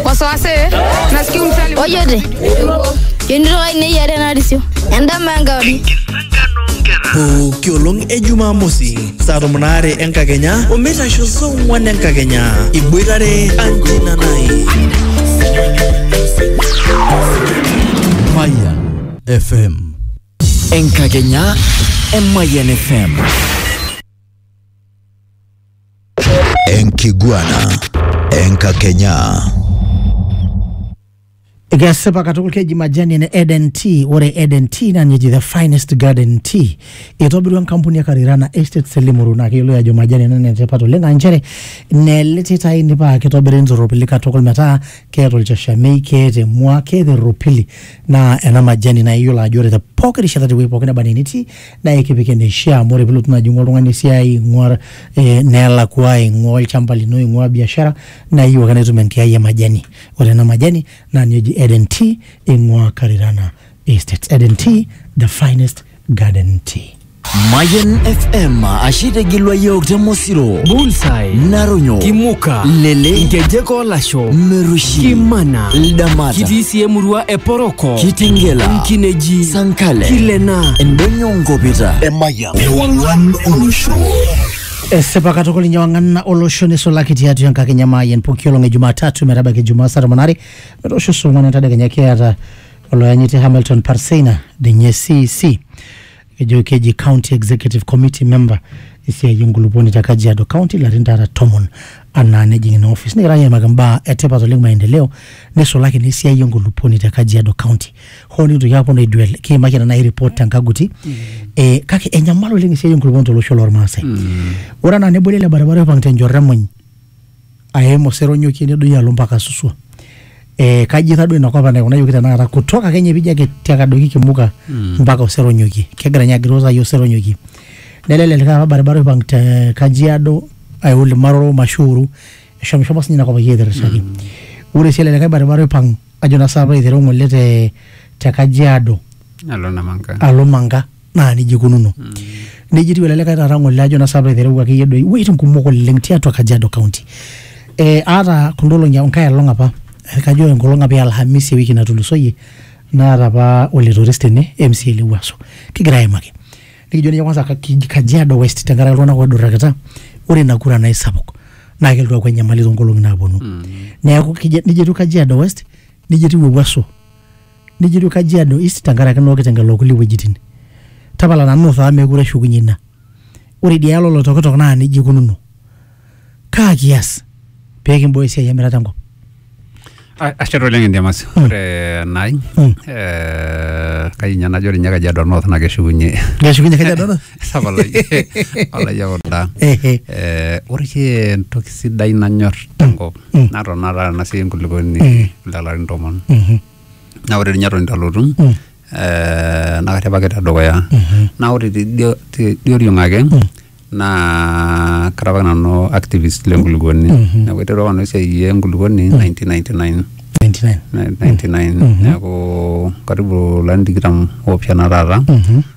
wasiwasi nasikia msali ojote yonitoka ineyare narisio endama enkauri pooki olong e jumamosi saa tomon aare enkakenya omeitasho saa ong'wan enkakenya iboitare anjina nai Mayan FM. Enkakenya e Mayan FM. Enkiguana Enkakenya. Ekesipa katukul keji majani ene Eden Tea. Ore Eden Tea naa ninye eji the finest garden tea. Eitobirua enkampuni e Karirana Estates e Limuru naa keyioloi ajo majani ena enetipat oleng aa nchere nele titai paa kitobiri ntoropili katukul metaa keeta olchashamei, keeta emua, keeta erropili naa ena majani naa iyiolo ajo ore te pooki rishata tewueji pooki neba enaa enitii naa ekipik eneishaa amu ore pilotu naaji ing'ua oltung'ani esiai ing'ua eh, nelakua ing'ua olchamba lino ing'ua biashara naa iyieu ake naitum enkiai e majani ore ena majani naa ninye eji Eden tea ing'ua Karirana Estates Eden tea the finest garden tea Mayan FM ashe itegilwa yiok te Mosiro, Bullseye, Naronyo, Kimuka, Lele, Nkejek Olasho, Merushi, Kimana, Ldamata. Kitii sii emurua Eporoko, Kitengela, Nkineji, Sankale, Kilena, Endonyo Ngopita, Emayian, Ewang'an Olosho. esipa katukul inye wang'ana olosho nisulaki tiatua enkakenya maayian pooki olong e jumatatu metabaiki jumaa saa tomon are metoosho saa ong'uan entadekenya kiata oloyanyiti hamilton parseina dinye cc ejo keji county executive committee member esiai enkulupuoni te kajiado county larin taata tomon anaa nejing ina office nikigira ninye aimaki mbaa etipat oleng maendeleo nisulaki naa esiai enkulupuoni te kajiado county hoo nikintoki aponu aiduel kiimaki ena nai report tenkaguti eh, kake enyamal oleng esiai enkulupuoni tolosho lormaasai ore anaa neboli ele baribara oipang tenchoto emuny aim oseronyokie nedoyio alo mpaka suswa eh, kaji taa duo inakop enaikunayioki tenakata kutoka kenye pijo ake tiaka adoiki kimuka mpaka oseronyokie kegira ninye agiroo sai oseronyokie nelo ele likae apa baribara oipang te kajiado ayau limaroro mashuuru eshomo shomo sinye inakop akeyie aitirishaki ore sii ele likae baribara oipang ajo naa saapa aiteru ng'ole te te kajiado Nalo Namanga. alo manga naa nejia ikununo nejia etiu ele likae taata ng'ole ajo nasa aitereu akeyie doi iwueitin kumok oleng tiatua Kajiado County eh, aata kunda olong'i enkae olong apa eh, kajo enkolong apa e Alhamisi ewiki natulusoyie naata apa olitoris tene MCA le Wuaso kigira aimaki nikijo ninye kwanza ka- ki- Kajiado West tenkaraki iltung'anak oidurrakita ore ina kura naa isapuk naa kelotu aaku enyamali toonkolong'i naaponu neeku kija- nijia etiu Kajiado West nijia etiu Ewuaso nijitu Kajiado East tenkaraki naa okitengela okulie wuejitin. Tapala nanu North amu meekure eshukunye ina. Ore idia yalo Oloitokitok naa nejia ikununo. Kaa kias pee kimbooyo esiai emirata enkop? A- Ashe taa oleng Endiamasi. Ore nai eh, kayieu ninye najo ore ninye Kajiado North naa keshukunye Keshukunye Kajiado North? Tapala iyie Olayiok Udaa. Ehe. Eh, ore oshi entoki sidai nanyor tenkop natona taata nasiai enkulukuoni lelarin tomon Mhm. naa ore ninye eton itu alotu Mm. eh, naa karripaki tedukuya naa ore tidio- tidioriong ake naa kara apa nanu activist lenkulukuoni neeku aiterua apa nanu esiai enkulukuoni 1999 99. 99 neeku karibu larin tikitam oopishana taata Mhm.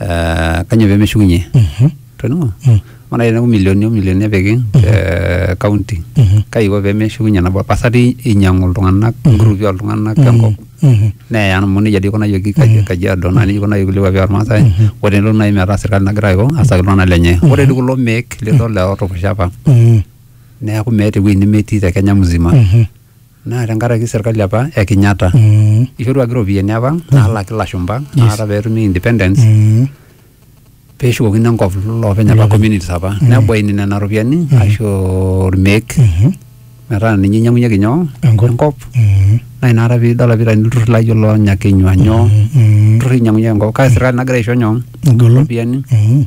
eh, kanyoo pemeshukunye toning'o amu nai teneku milioni o milioni epiki eh, county kai iko pemeshukunye nabo pasa ti inyang'u iltung'anak ingrupi oltung'anak enkop neya amu nejia dii ikunayioki Kaji- kajiado naa nejia ikunayioki kulie kuapi ormaasai ore tenelo nai metaa serkali nagira aiko asaki iltung'anak lenye ore dii kulo meek lidol lootukushapa neeku meeta ewueji nemetii te kenya mzima naa tenkaraki serkali apa e Kenyatta Mm. ishoruaki iropiyiani apa naalaki ilashumba naata peetumi independence Mm. peeshukokini enkop loopeny apa communities apa nebaini nena ropiyiani aisho irmeek Mhm. metaa ninye inyiang'unyeki nyoo Enkop. enkop Mm. naa inakata piidol apa itani ilturruri laijo loo nyakenyua nyoo Mm. ilturruri inyiang'unyeki enkop kake serkali nagira aisho nyoo Egolon. iropiyiani Mm.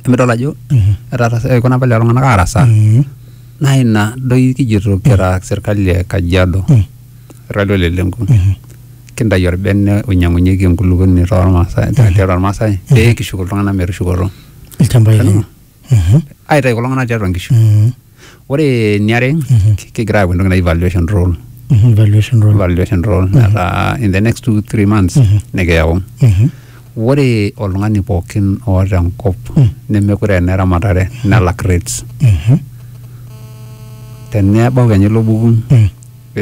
emidol ajo Mhm. etaara- ikuna apa lelo tung'anak aarasaa Mm. Naa ina doi kijito kira serkali e Kajiado irrali olelenku kintayu orbene oinyang'unyieki enkulupuoni tormaasai tiatua irmaasai pee kishuk iltung'anak metushukoto ilchambai lenye. Amu, Mhm. aitayu kulo tung'anak tiatua inkishu. Mhm. Ore eniare kigira aaku entoki naji valuation roll Mhm. Valuation roll. valuation roll metaa in the next two three months nikiyau Mhm. Ore oltung'ani pookin oota enkop nemekure aa eneramatare nelak rates. Tenebau kenya ilo buku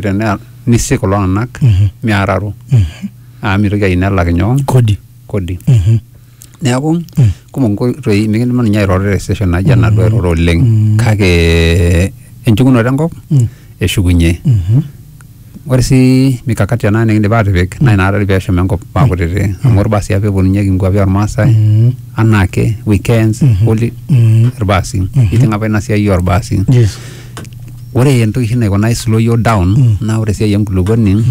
tenaa nisik kulo tung'anak meararo amu mitoki ayieu nelak nyoo? Kodi. Kodi. Neeku kumok inkoitoi mikidumu ninye airoro te session naija enaduo airoro oleng kake enchukunoto enkop eshukunye. Ore sii mikakati ena nikiindim aatipik naa inakata doi peeshum enkop aa kutiti amu ilbaasi apa epuonunyeki inkuapi olmaasai anaake, weekends, holi, ilbaasi. Nijing' apa ina siai olbaasi. Yes. Ore entoki oshi naikuna slow iyiok down naa ore esiai enkulukuoni